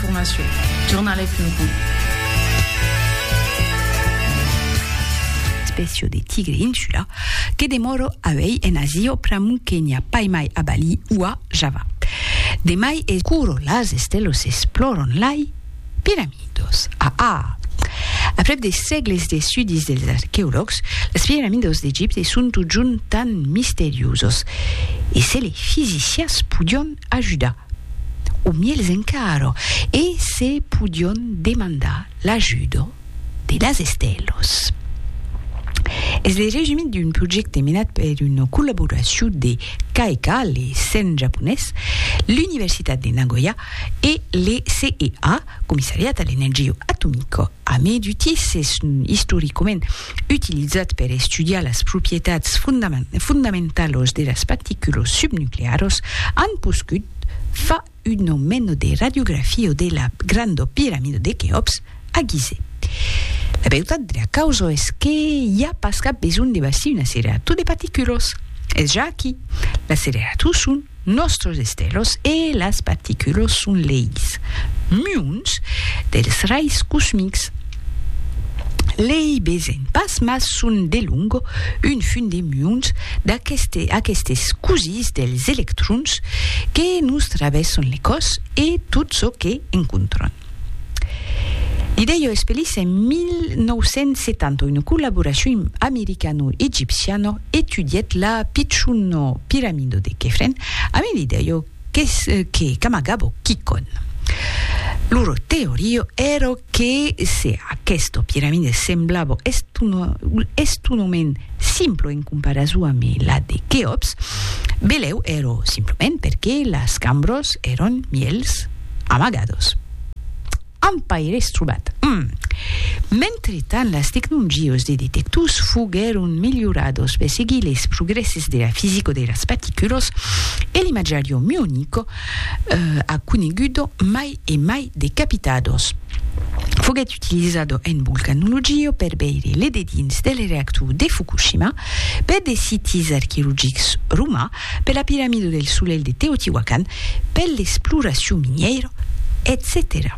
Formacion, jornalais punt com. Espècia de tigre insula que demòro auèi en Asia pr'amor que n'i a pas mai a Bali o a Java. De mai es. Curo las estelos esplòron lai piramidos. A a. Aprèp de sègles d'estudis dels arqueològs, las piramidos d'Egipte son totjorn tan misteriosos. E se lei fisicians podion ajudar. o mièlhs encara, e se podion demandar l'ajuda de las estèlas. Es le resumit d'un projècte menat per una collaboracion de CAECAL, le CERN japonés, l'Universitat de Nagoya e le CEA, Comissariat a l'Energia Atomica. A mai d'utissèson istoricament utilizat per estudiar las proprietats fondamentalos de las particulos subnuclearos, an poscut fa uno meno de radiografio de la grando piramido de Queops a Gizeh. La beutat de la causo es que i a pas cap besonh de bastir un accelerator de particulos. Es ja aquí. L'accelerator son Nòstros estelos e las particulos son leis muons dels rais cosmics. Lei besen pas mas son delong un fum de muons d'aquestes cosís dels electrons que nos travèsson le còs e tot çò que encontron. L'idèia es pelissa en 1970, una collaboracion americano-egipciana etudièt la pichona piramida de Khefren ambe l'idèia qu'es que qu'amagava quicòm. Lor teoria èra que se aquesta piramida semblava estonament simpla en comparason ambe la de Kheops, belèu èra simplement perque las cambras èran mièlhs, amagados amb paires trobat. Mentretant, las tecnongios de detectors foguèron melhorados per seguir les progrèsses de la fisico de las paticulos e l'imatjario muonico a conegudo mai e mai de capitados foguèt utilizado en volcanologia per veire le dedins del reactor de Fukushima per de sitis arqueologics romans per la Piramido del Solelh de Teotihuacan, per l'exploracion minièira, etcetèra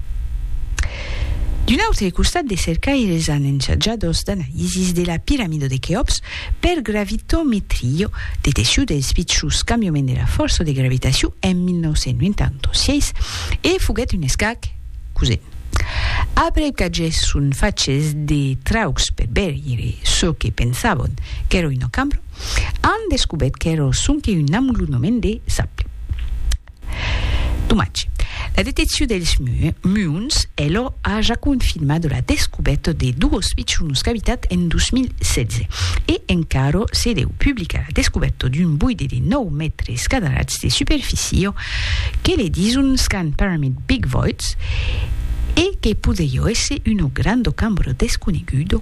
D'un autre costat, de cercaires an ensajadors d'analisis de la Piramido de Queops per gravitometria, deteccion dels pichons cambiaments de la fòrça de gravitacion en 1986, e foguèt un escac cosen. Après qu'agèsson faches de traucs per veire çò que pensavon qu'èra una cambra, an descubèt qu'èra sonque un amolonament de sable. Domatge. La deteccion dels muons es lo a ja confirmat la descubèta de dos pichonos cavitats en 2016 e encara se deu publicar la descubèta d'un boide de 9 mètres cadrats de superficia que le disons qu'an permit Big Voids e que podriá èsser una granda cambra desconeguda.